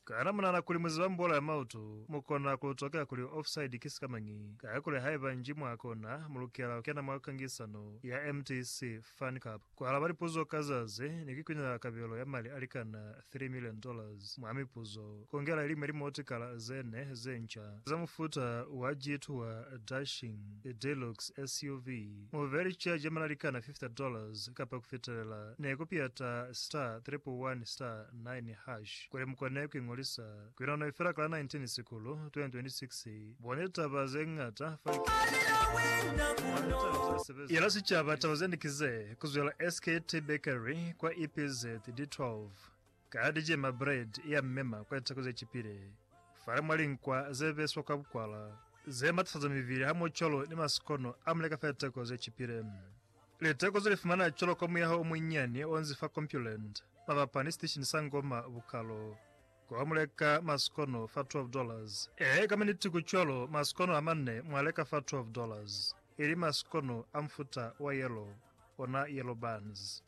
Kana munahana kuli muziba mubolo ya mautu? Mukona kulutokela kuli offside ki sikamañi, kakuli haiba nji mwa kona, mulukela kukena mwa kangisano ya MTC Fan Cup. Kualaba lipuzo ka zazi ni kukwinelela kabelo ya mali alikana three million dollars mwa mipuzo, kongela iliñwi limotikala zene zenca za mufuta wa G-Tour Dashing Deluxe SUV. Mubeli cha jamela likana 50 dollars kapa kufitelela ne ku piyata star triple one star nine hash kuli mukone ku ingolisa. Kuinano ifela kala 19 Sikulu 2026. Bone litaba zeñata fa litaba zesebeza. Yela sicaba taba zende kize, kuzwela SKT Bakery kwa EPZ, D12. Ka li cema bread ya mmema kwa litsako ze cipile, fale mwa linkwa ze beswa kwa bukwala, ze matafaza mibili hamoho cwalo ni masikono a mule ka fa litako ze cipile. Litako ze li fumana cwalo kwa muyaho o munyinyani o nzi fa Compuland, mabapa ni sitishini sa Ngoma Bukalo, kwa mule ka masikono fa 12 dollars. Ee, ka maniti ku cwalo, masikono a manne mwa leka fa 12 dollars, ili masikono a mufuta wa yellow, ona yellow buns.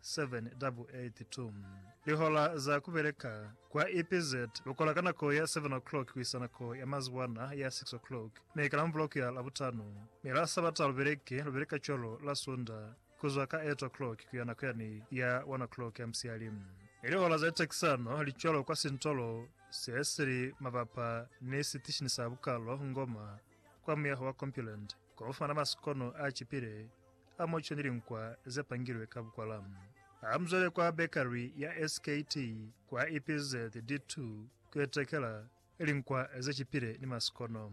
782 Lihola za kubeleka kwa EPZ lukola ka nako ya 7 o'clock kuisa nako ya mazuwana ya 6 o'clock mi ka Lamubuloko ya Labutano, mi la Sabata lubeleke lubeleka cwalo la Sunda kuzwa ka 8 o'clock kuya nako yani ya 1 o'clock ya musiyali. Mi lihola za litekisano li cwalo kwa sintolo se sili mabapa ni sitishini sa bukalo Ngoma kwa muyaho wa Compuland. Kwa ku fumana maskono a cipile a muco ni linkwa ze pangilwe ka bukwala, ha mu zwele kwa bekari ya SKT kwa EPZ D2 ku itekela linkwa ze cipile ni maskono.